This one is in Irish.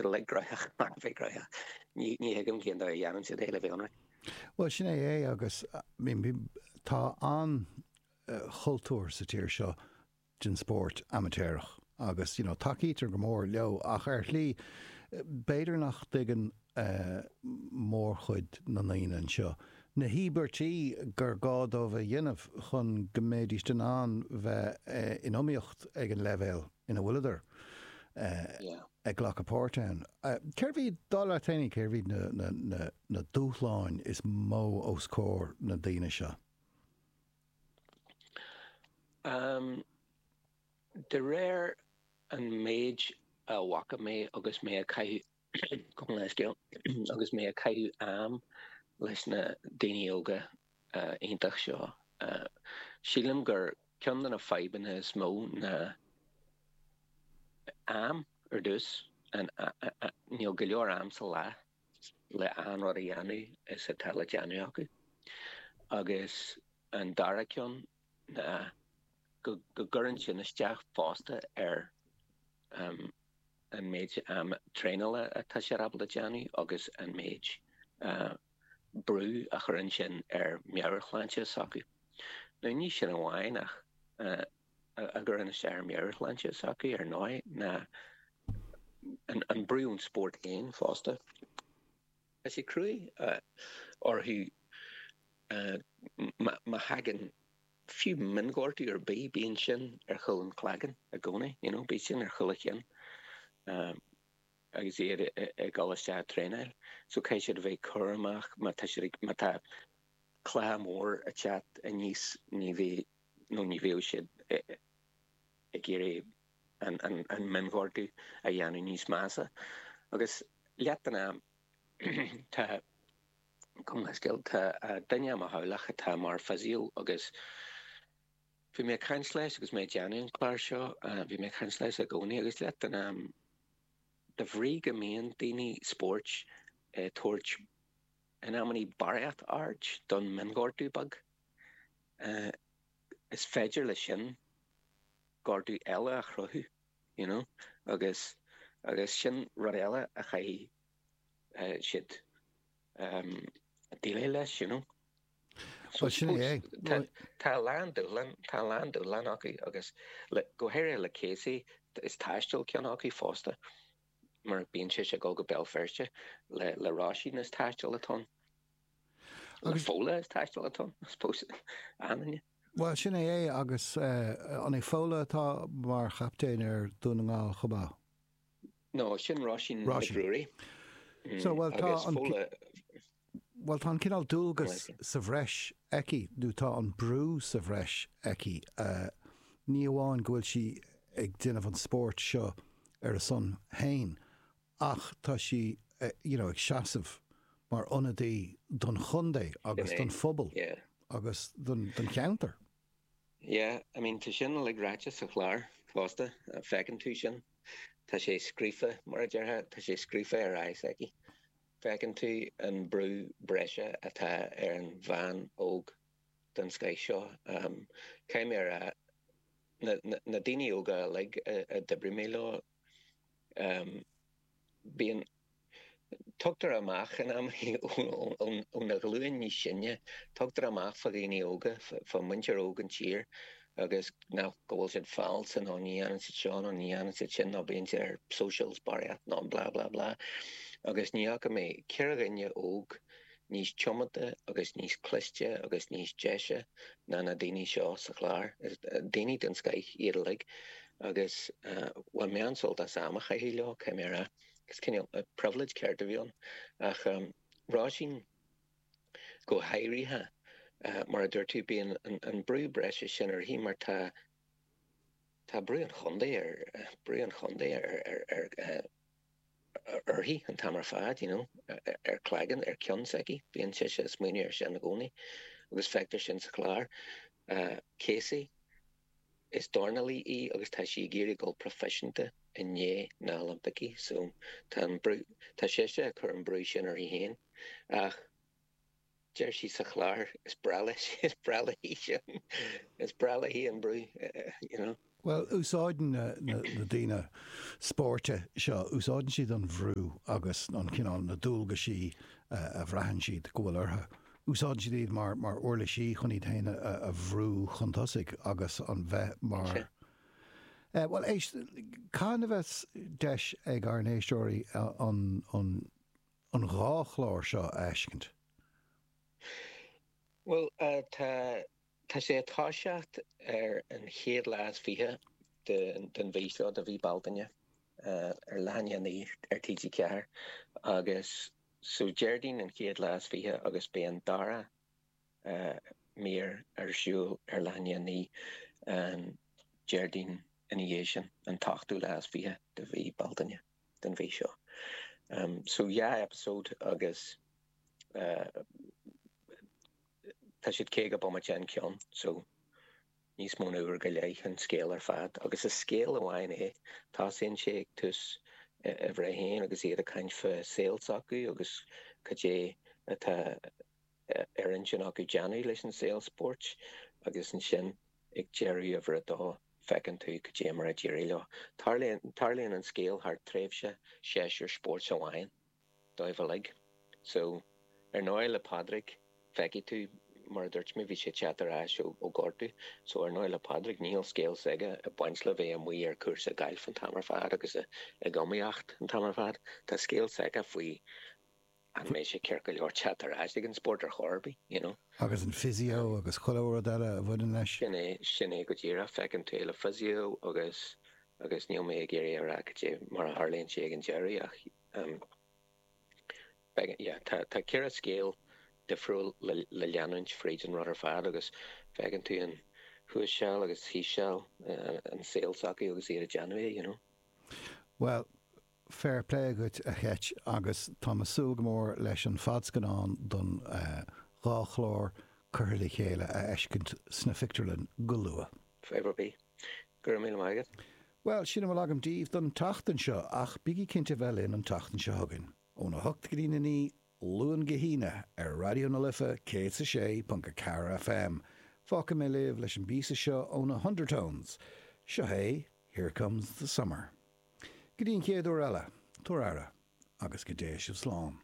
Gréagach, mar bhí Gréagach. Ní thuigim cén dóigh a dhéanann siad é le bheith ionraic. Bhuel, sin é é agus tá an-chultúr sa tír seo den spórt amaitéarach agus tacaítear go mór leo ach ar shlí, b'fhéidir nach dtuigeann mórchuid na ndaoine anseo na híobairtí gur gá dóibh a dhéanamh chun go mbéidíst in ann bheith in iomaíocht ag an leibhéal ina bhfuileadar ag glacadh páirt ann. Cérbh iad, a Danny, cérbh na dúshláin is mó os comhair na ndaoine seo? De réir an méid a bhfaca mé agus mé ag caitheamh Gabh mo leithscéal agus mé ag caitheamh am leis na daoine óga iontach seo. Sílim gur ceann de na fadhbanna is mó ná am. Ar dtús, níl go leor am sa lá le achan rud a dhéanamh is atá le déanamh acu. Agus an dara ceann ná. go gcuireann sin isteach fosta ar an méid traenála atá siad ábalta a dhéanamh agus an méid brú a chuireann sin ar mheabhairshláinte s'acu. Now ní sin amháin a gcuireann isteach ar mheabhairshláinte s'acu ar ndóigh ná an brú ón spórt féin fosta. Tá sé cruaidh orthu má thagann. fiú mionghortú ar bith, bíonn sin ar chúl an chloiginn i gcónaí, you know, bíonn sin ar chúl a chinn agus iad ag dul isteach ag traenáil. So caithfidh siad a bheith cúramach má tá siad ag, má tá cluiche mór ag teacht aníos, ní bheidh, nó ní bheadh siad ag iarraidh an mionghortú a dhéanamh níos measa. Agus leath den am, tá. chomh maith, tá duine i mo theaghlach atá mar physio agus bhí mé ag caint leis agus mé ag déanamh an chláir seo, bhí mé ag caint leis i gcónaí agus leath den am, de bhrí go mbíonn daoine spóirt ag tabhairt in amannaí barraíocht aird don mionghortú beag, is féidir leis sin gortú eile a chruthú, you know, agus, agus sin rud eile a chaithfidh. siad déileáil leis, you know. Bhuel, sin é. Tá a lán dúshlán, tá a lán dúshlán acu agus go háirithe le Casey, is taisteal ceann acu fosta mar bíonn sé ag dul go Béal Feirste le Róisín is taisteal atá ann, le Fódhla is taisteal atá ann, I suppose, ann. Bhuel, sin é é agus an é Fódhla atá mar chaptaen ar Dhún na nGall chomh maith? No, sin Róisín na Brúirí. So, bhuel, tá an, bhuel, tá an cineál dualgas sa bhreis aici, nó tá an brú sa bhreis aici, ní amháin go bhfuil sí ag déanamh an spóirt seo ar a son féin ach tá sí, you know, ag seasamh mar ionadaí don chontae agus don phobal agus don cheantar. Yeah, I mean, tá sin uilig ráite sa chlár fosta, feiceann tú sin. Tá sé scríofa, mar a déarfá, tá sé scríofa ar aghaidh s'aici. Feiceann tú an brú breise atá ar an bhean óg den scoith seo. Caithfidh mé a rá, na daoine óga uilig a d'oibrigh mé leo, bíonn. Tugtar amach in amannaí ón ghlúin níos sine, tugtar amach fá dhaoine óga, fá mhuintir óg na tíre agus nach, go bhfuil siad falsa nó ní dhéanann siad seo nó ní dhéanann siad sin nó bíonn siad ar socials barraíocht nó blah blah blah agus ní fhaca mé, ceathrar daoine óga, níos tiomanta agus níos cliste agus níos deise ná na daoine seo sa chlár. Daoine den scoith iad uilig agus bhain mé an-sult as am a chaitheamh leo, caithfidh mé a rá. Is cineál privilege ceart a bhí ann. Ach Róisín go háirithe, mar a dúirt tú, bíonn an brú breise sin uirthi mar tá, tá brú an chontae ar uirthi an t-am ar fad, you know, ar cloigeann, ar ceann s'aici, bíonn sise ag smaoineamh air sin i gcónaí agus feictear sin sa chlár. Casey, is dornálaí í agus tá sí ag iarraidh dul proifisiúnta i ndiaidh na nOilimpicí so tá an brú, tá sise ag cur an brú sin uirthi féin ach, Deir sí sa chlár, Is breá leis, is breá léi sin, is breá léi an brú, you know. Bhuel, úsáideann na daoine spóirt seo, úsáideann siad an bhrú agus an cineál, na dualgaisí a bhraitheann siad go bhfuil orthu, úsáideann siad iad mar, mar uirlisí chun iad féin a bhrú chun tosaigh agus an bheith mar, eh, bhuel, éist, cathain a bheidh deis ag ár n-éisteoirí an, an, an dhá chlár seo a fheiscint? Bhuel, tá, tá sé ag toiseacht ar an chéad lá is fiche de, den mhí seo, de mhí Bealtaine, ar leath i ndiaidh a naoi ar TG4 agus, so, Déardaoin an chéad lá is fiche agus beidh an dara mír ar siúl ar leath i ndiaidh a naoi an Déardaoin ina dhiaidh sin, an t-ochtú lá is fiche de mhí Bealtaine. den mhí seo. So dhá episode agus tá siad caoga bomaite in ceann, so níos mó na uair go leith an scéal ar fad agus is scéal amháin é. Tosaíonn sé ag tús uimhir a haon agus iad ag caint faoi saol s'acu agus cad é atá ar intinn acu déanamh leis an saol spóirt agus ansin ag deireadh uimhir a dó feiceann tú cad é mar a d'éirigh leo. Tarlaíonn an scéal thar tréimhse séasúr spóirt amháin dóibh uilig. So, ar ndóigh le Pádraig feicfidh tú mar a dúirt mé bhí sé ag teacht ar ais ó gortú so ar ndóigh le Pádraig níl scéal s'aige ag baint le bheith amuigh ar cúrsa gailf an t-am ar fad agus ag iomaíocht an t-am ar fad. Tá scéal s'aige faoi An mbeidh sé ceart go leor teacht ar ais chuig an spórt ar chor ar bith, you know? Agus an physio agus achan rud eile a bhaineann leis? Sin é, sin é go díreach. Feiceann tú le physio agus, agus níl mé ag iarraidh a rá cad é mar a tharlaíonn sé ag an deireadh ach ehm, beidh, yeah, tá, tá ceithre scéal difriúil le, le leanúint fríd an rud ar fad agus feiceann tú an thuas seal agus thíos seal, an saol s'acu agus iad ag déanamh é, you know? Bhuel, Fair play agat a Cheit agus táim ag súil go mór leis an fadscannán don dhá chlár curtha le chéile a fheiscint sna pictiúrlainn go luath. Go raibh míle maith agat. Bhuel, sin a bhfuil agam daoibh don tseachtain seo, ach bígí cinnte bheith linn an tseachtain seo chugainn, óna hocht go dtí a naoi, Luan go hAoine, ar Raidió na Life 106.4 FM. Fágfaidh mé sibh leis an bpíosa seo ó na hUndertones. Seo é Here Comes the Summer. Go dtí an chéad uair eile, tabhair aire, agus go dté sibh slán.